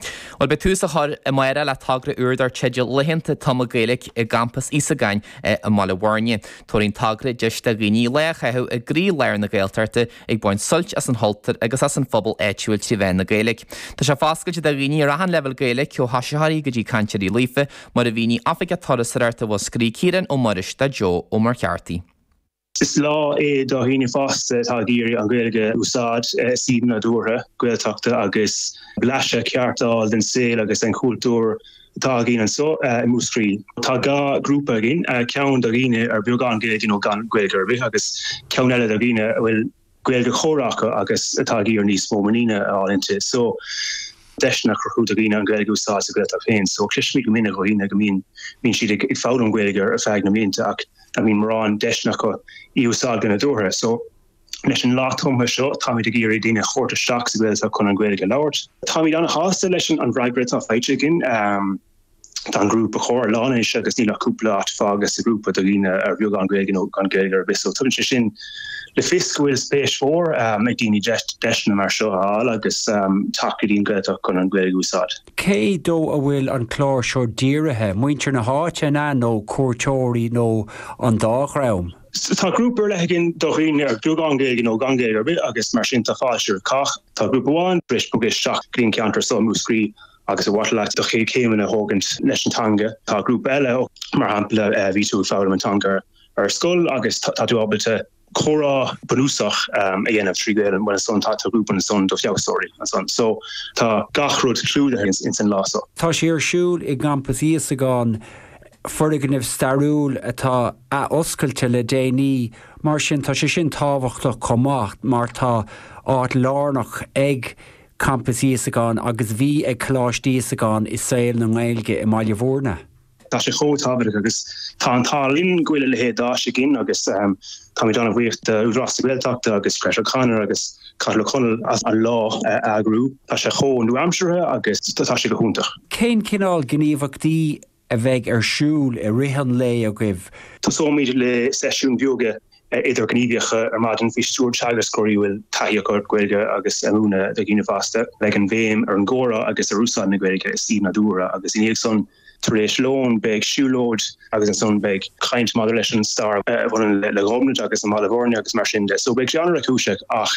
Bhuel, beidh tús á chur amárach le togra úr dar teideal Laethanta Tumtha Gaeilge i gCampas Íosagáin i mBaile Mhuirne. Tabharfaidh an togra deis do dhaoine lá a chaitheamh i gcroí lár na Gaeltachta ag baint suilt as an chultúr agus as an phobal áitiúil trí mheán na Gaeilge. Tá sé foscailte do dhaoine ar achan leibhéal Gaeilge ó thosaitheoirí go dtí cainteoirí líofa, mar a mhínigh Oifigeach Turasóireachta Mhúscraí Ciarán Ó Muiris do Joe Ó Muircheartaigh. Is lá é do dhaoine fásta atá ag iarraidh an Ghaeilge a úsáid i suíomh nádúrtha, Gaeltachta agus blaiseadh ceart a fháil den saol agus den chultúr atá againn anseo i Múscraí. Tá dhá ghrúpa againn, ceann do dhaoine ar beagán Gaeilge nó gan Gaeilge ar bith agus ceann eile do dhaoine a bhfuil Gaeilge chóir acu agus atá ag iarraidh níos mó muiníne a fháil inti. So deiseanna a chruthú do dhaoine an Gaeilge a úsáid sa Gaeltacht féin. So cloisimid go minic ó dhaoine go mbíonn mbíonn siad ag foghlaim Gaeilge ar feadh na mblianta ach nach mbíonn mórán deiseanna acu í a úsáid go nádúrtha. So leis an lá tumtha seo táimid ag iarraidh daoine a thabhairt isteach sa Gaeltacht chun an Gaeilge a labhairt. Táimid ana-shásta leis an bhfreagra atá faighte againn. Tá an grúpa chóir lán anois agus níl ach cúpla áit fágtha sa grúpa do dhaoine ar bheagán Gaeilge nó gan Gaeilge ar bith, so tugann sé sin le fios go bhfuil spéis mhór um, ag daoine deiseanna mar seo a fháil agus um, teacht go dtí an Ghaeltacht chun an Gaeilge a úsáid. Cé dó a bhfuil an clár seo dírithe, muintir na háite an ea nó cuairteoirí nó an dá dhream? Tá grúpa ar leith againn do dhaoine ar beagán Gaeilge nó gan Gaeilge ar bith agus mar sin tá fáilte roimh cách. Tá grúpa amháin tar éis bogadh isteach go dtí an ceantar so Múscraí Agus ba mhaith leat do chéad chéimeanna a thógaint leis an teanga, tá grúpa eile ó, mar shampla, má bhí tú ag foghlaim an teanga ar scoil agus tá tú ábalta comhrá bunúsach a dhéanamh trí Ghaelainn, bhuel ansan tá grúpa ansan do feabhsaitheoirí ansan. So, tá gach rud clúdaithe ins an lá so. Tá sé ar siúl i gCampas Íosagáin, foirgneamh stairiúil atá athoscailte le déanaí, mar sin tá sé sin tábhachtach chomh maith mar tá áit lárnach ag Campas Íosagáin agus bhí ag Coláiste Íosagáin i saol na nGaeilge i mBaile Mhúirne. Tá sé chomh tábhachtach agus tá an t-ádh linn go bhfuil a leithéid d'áis againn agus táimid ana-bhuíoch do Údarás na Gaeltachta agus Greta O'Connor agus Cathal Ó Conaill as an lá a eagrú. Tá sé chomh nua-aimseartha agus tá sé go hiontach. Cén cineál gníomhachtaí a bheidh ar siúl i rith an lae agaibh. Tosóimid le seisiúin bheoga idirghníomhacha ar maidin faoi stiúir teagascóirí a bhfuil taithí acu ar Ghaeilge agus a mhúineadh do dhaoine fásta. Beidh an bhéim ar an gcomhrá agus ar úsáid na Gaeilge i suíomh nádúrtha agus i ndiaidh san tar éis lón beidh siúlóid agus ansan beidh caint maidir leis an stair a bhaineann le Gobnait agus i mBaile Bhúirne agus mar sin de. So beidh sé an-réchúiseach ach.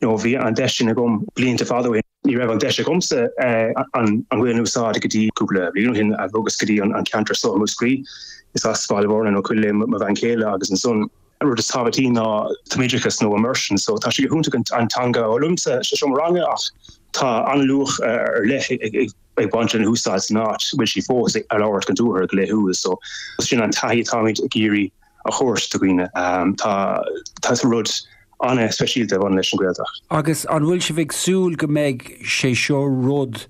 nó bhí an deis sin agam blianta fada ó shin. Ní raibh an deis agamsa an Ghaolainn a úsáid go dtí cúpla bliain ó shin agus go dtí an ceantar seo i Múscraí. Is as Baile Mhúirne nó Cúil Aodha mo bhean chéile agus an rud is tábhachtí ná tumoideachas nó immersion, so tá sé go hiontach an teanga a fhoghlaim sa seomra ranga ach tá an-luach ar leith ag baint lena húsáid san áit bhfuil sí fós á labhairt go nádúrtha go laethúil, so sin an taithí atáimid ag iarraidh a thabhairt do dhaoine. Tá rud an-speisialta ag baint leis an Ghaeltacht. Agus an bhfuil sibh ag súil go mbeidh sé seo rud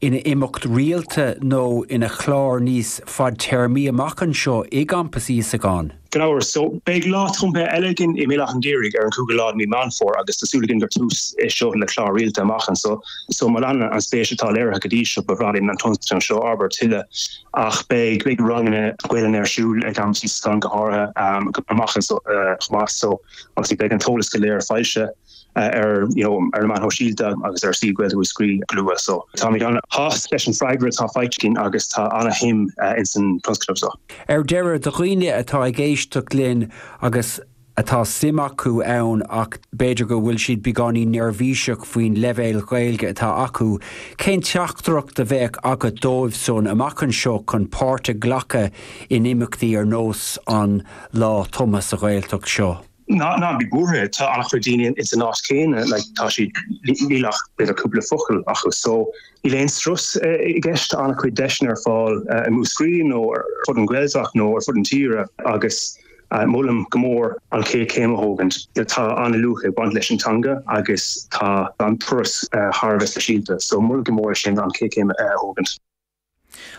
ina imeacht rialta nó ina chlár níos fadtéarmaí amach anseo i gCampas Íosagáin? Gan amhras. So, beidh lá tumtha eile againn i mBéal Átha'n Ghaorthaidh ar an cúigiú lá de mí Meán Fómhair agus tá súil againn gur tús é seo le clár rialta amach anseo. So, má leanann an spéis atá léirithe go dtí seo, ba bhreá linn an tionscadal seo a fhorbairt tuilleadh. Ach beidh beidh ranganna Gaelainne ar siúl i gCampas Íosagáin go háirithe amach anseo chomh maith so agus beidh an t-eolas go léir foilsithe ar you know ar na meáin shóisialta agus ar suíomh Gaeilge Mhúscraí go luath so táimid an-sásta leis an freagra atá faighte againn agus tá an-shuim insan tionscnamh so. Ar deireadh, do dhaoine atá ag éisteacht linn agus atá suim acu ann ach b'fhéidir go bhfuil siad beagáinín neirbhíseach faoin leibhéal Ghaeilge atá acu, cén teachtaireacht a bheadh agat dóibh san amach anseo chun páirt a ghlacadh in imeachtaí ar nós an Lá Tumtha sa Ghaeltacht seo? Ná bí buartha, tá an-chuid daoine ins an áit chéanna, like tá siad, níl ach b'fhéidir cúpla focal acu so níl aon strus i gceist, tá an-chuid deiseanna ar fáil i Múscraí nó ar fud an Ghaeltacht nó ar fud an tíre agus Molaim go mór an chéad chéim a thógaint. Tá an-luach ag baint leis an teanga agus tá an turas thar a bheith speisialta so molaim go mór é sin, an chéad chéim a thógaint.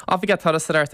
Oifigeach Turasóireachta